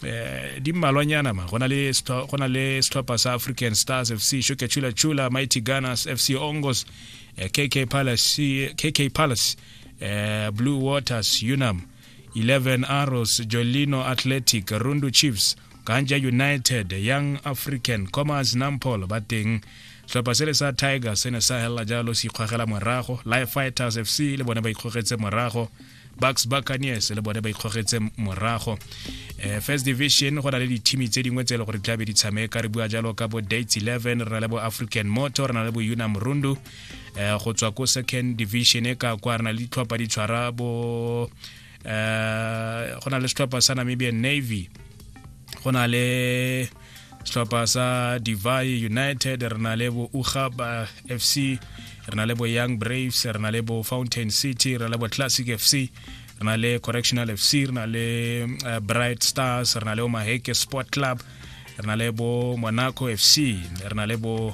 eh di mmalwanyana ma go na le go na le setlhopha sa african stars fc shuke chula chula mighty gunners fc ongos eh, kk palace kk palace eh, blue waters unam 11 arrows jolino athletic rundu chiefs ganja united young african commerce nampol ba teng setlhopha se le sa tiger se ne sa helela jalo se ikgogela morago life fighters fc le bone ba ikgogetse morago bucks buccaneers le bone ba ikgogetse morago um first division go na le dithimi tse dingwe tse e le gore di tlabe di tshameka re bua jalo ka bo dates 11 re na le bo african motor re na le bo una morundu um eh, go tswa ko second division e ka kwa re na le ditlhopha di tshwara bo um go na le setlhopha sa namibian navy go na le setlhopha sa divai united re na le bo ugaba fc re na le bo young braves re na le bo fountain city re na le bo classic fc re na le correctional fc re na le eh, bright stars re na le omaheke sport club re na le bo monaco fc re na le bo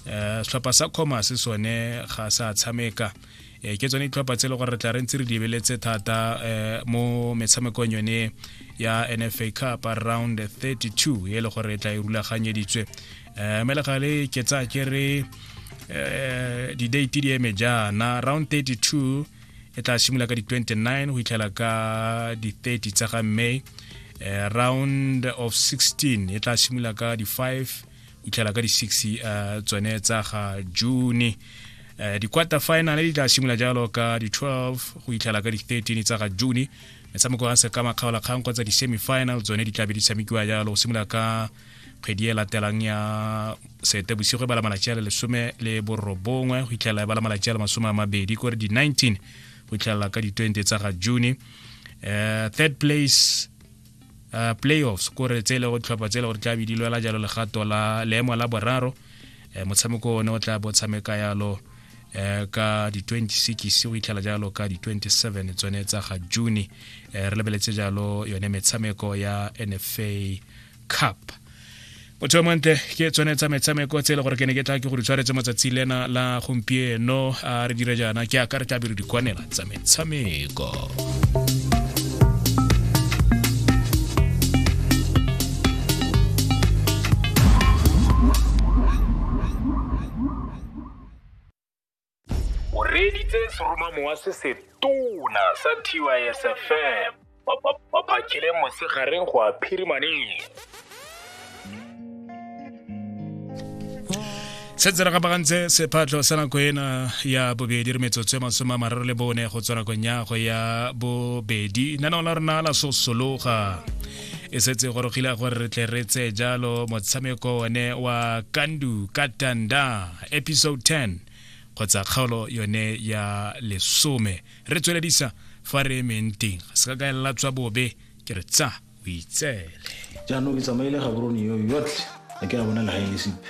eh, setlhopha sa commerce sone ga sa tshameka e ke tsone ditlhopha tse e le gore re tla re ntse re lebeletse thata um mo metshamekong yone ya nfa cup around 32 e le gore e tla e rulaganyeditswe um mme le gale ke tsaya ke re um di-date di eme jaana round 32 e tla simolola ka di-29 go itlhela ka di-30 tsa ga may uh, round of 16 e tla simolola ka di-5 utlhela ka di-six uh, tsone tsa ga june uh, di-quarter final di tla simolola jalo ka di-12 go itlhela ka di-13 tsa ga june metshameko ya sekama kgaola kgang kgotsa di-semifinal tsone di tlabe di tshamekiwa jalo go simolola ka kgwedi e latelang ya sete bosigo e bala malatsi a le lesome le borobongwe go itlhelela e bala malatsi a le masome a mabedi kore di-19 go itlhelela ka di-20 tsa ga june uh, third place uh, playoffs kore tse e le go ditlhopha tse e le gore tla be di lwela jalo legato la leemo la boraro um motshameko one o tla bo tshameka yalo um ka di-26 go itlhela jalo ka di-27 tsone tsa ga june um re lebeletse jalo yone metshameko ya nfa cup motho yo montle ke tsone tsa metshameko tse e le gore ke ne ke tla ke go di tshwaretse matsatsi lena la gompieno a re dire jaana ke aka re tla bere dikwanela tsa metshameko o reeditse seromamowa se se tona sa tysfm ba bakile mosegareng go a phirimaneng se tsena ka bagantse sephatlho sa nako ena ya bobedi re metsotso ya masome a mararo le bone go tswa nakong ya go ya bobedi nana o la rona la sosologa e setse gorogile gore re tle re tseye jalo motshameko one wa kandu katanda episode 10 kgotsa kgaolo yone ya lesome re tsweledisa fa re emeng teng ga se ka kaelela tswa bobe ke re tsa o itsele jaanong ke tsamaile gaborone yo yotlhe a ke a bona le ga e le sepe